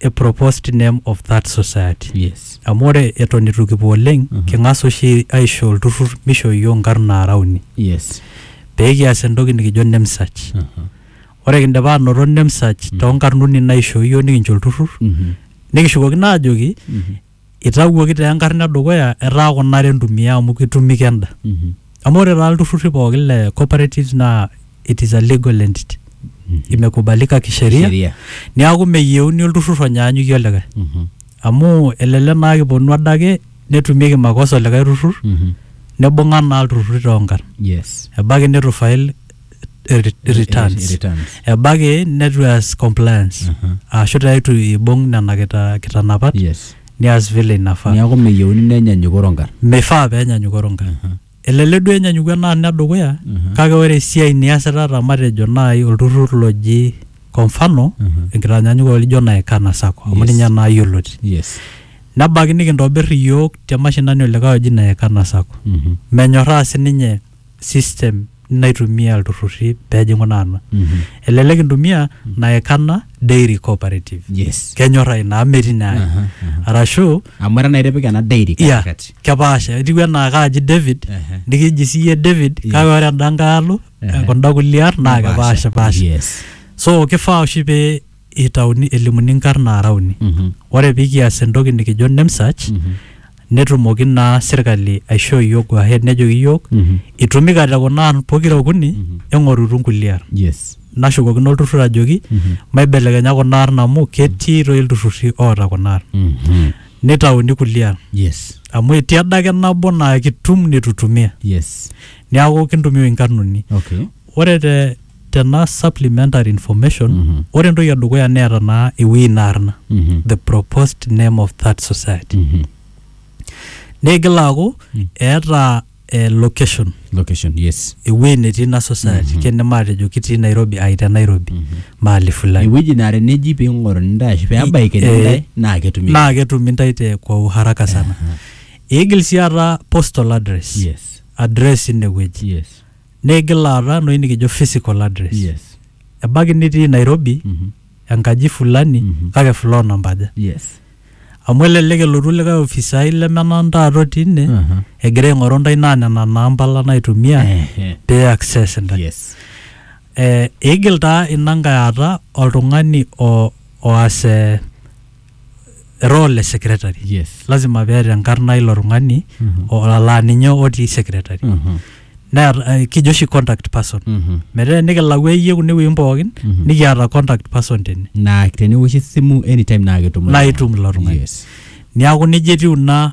e proposed name of that society yes amu ore eton itu kipuo oleng Mhm. king'as oshi aisho olturrur misho iyio nkarn naara uni yes pee kias entoki nikijo name search Aha. ore kindipa anoto name search toonkarn uni naishoo iyio nikincho olturrur Mhm. nikishukokino aajoki Mhm. Itawuoki taa enkarna edukuya etaa kuna are entumia amu kitumika enda. Amu ore taa ilturrurri pookin le cooperatives naa it is a legal entity. Imekubalika kisheria, Kisheria. neeku meyieuni olturrur onyaanyukie olikae. Amu elelek naa kiponu adake netumieki makosa olikae turrur, nibung'a naa ilturrurri toonkarn. Yes. Ebaiki nitu file eh, re- Eh, returns returns. ebaiki netu eas compliance Aha. ashu taa itu ibung nena kita- kitanapat yes nias vile inafaa niaku meyieuni nenyanyuk orongar mifaa penyanyuk oronga elelek duo enyanyuku enaa ina dukuya Mhm. kake ore esiai niasita ta matejo naai olturrur loji kwa mfano Mhm. enkitanyanyukoto lijo nae kana sako amu Yes. ninye naa yioloti yes nebaiki nikintobir iyiook te mashinani olikae oji nae kana sako Mhm. menyorraa sininye system naitumia ilturrurri pejing'u naa ena Mhm. elelek intumia naekana dairy cooperative yes kenyorra ina amu metii naa Aha, aha. arashu amu era naa itipika ena dairy iya katikati kepaasha etiu enaa kaaji david Ehe. nikiji siiyie david Yes. kake ore enda nkae alo Ehe. kunda kulie ar naa Kepaasha. kepaashipasha yes so kifaa oshi pee eitauni elimuni nkarn naara uni. Ore pee kias entoki nikijo name search netumoki naa sirkali aishoo iyiook go ahead nejoki iyiook itumikate kuna arn pokira okuni eng'orutu nkulie arn. Yes. Nashukokino olturrur ajoki maibelekenya kuna arn amu ketii toi ilturrurri oota kuna arn. Neitauni kulie arn. Yes. Amu etii adake nabo naa kitum nitu itumia. Yes. Neeku kintumia inkarn uni. Okay. Ore te tena supplementary information, Mhm. ore entoki edukuya neeta naa ewueji ina arna, Mhm. the proposed name of that society. Mhm. Neigil aaku Mm. eeta eh, location, Location, yes. ewueji netii ina society, Mhm. kene maatejo kitii Nairobi, ai te Nairobi, Mhm. mahali fulani. Ewueji naa teneji pee ing'oruni intae ashu pee ebaikini Eh, intae naa ketumi. Naa ketumi intae te kwa uharaka sana. Aha. Eigil sii aata postal address, Yes. address ine wueji. Yes. Nigil aata enoshi nikijo physical address. Yes. Ebaiki nitii Nairobi Mhm. enkaji fulani Mhm. kake floor namba aja. Yes. Amu elelek elotu likae ofisai lemenang taata otii ine Aha. egira aing'oru ntae naa nena namba lang naitumia Ehe. pee access ntae. Yes. Eh, eigil taa ina nkae aata oltung'ani o- oas eh, role e secretary yes lazima peeta enkarna ilo tung'ani Mhm. o- laa ninye otii secretary Mhm. neeta eh, kijo oshi contact person Mhm. metaa nikilau eyie kune wuejitin pookin Mhm. nikiata contact person tene naa tenewoshi esimu anytime naa ketum naa itum ilo tung'ani yes niaku nejia etiu ina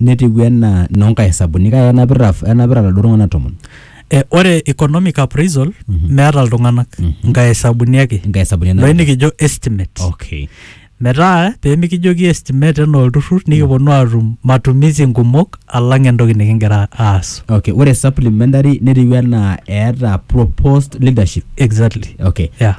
netiu enaa inoo nkae hesabuni kake enapita enapita iladuo tung'anak tomon Eh, ore economic appraisal meeta iltung'anak nkae hesabuni ake inkae hesabuni enapita. loini kijo estimate okay metaa pemikijoki estimate enaa olturrur nikiponu atum matumizi nkumok alang entoki nikingira aas okay ore supplementary netiu enaa eeta proposed leadership exactly okay yeah.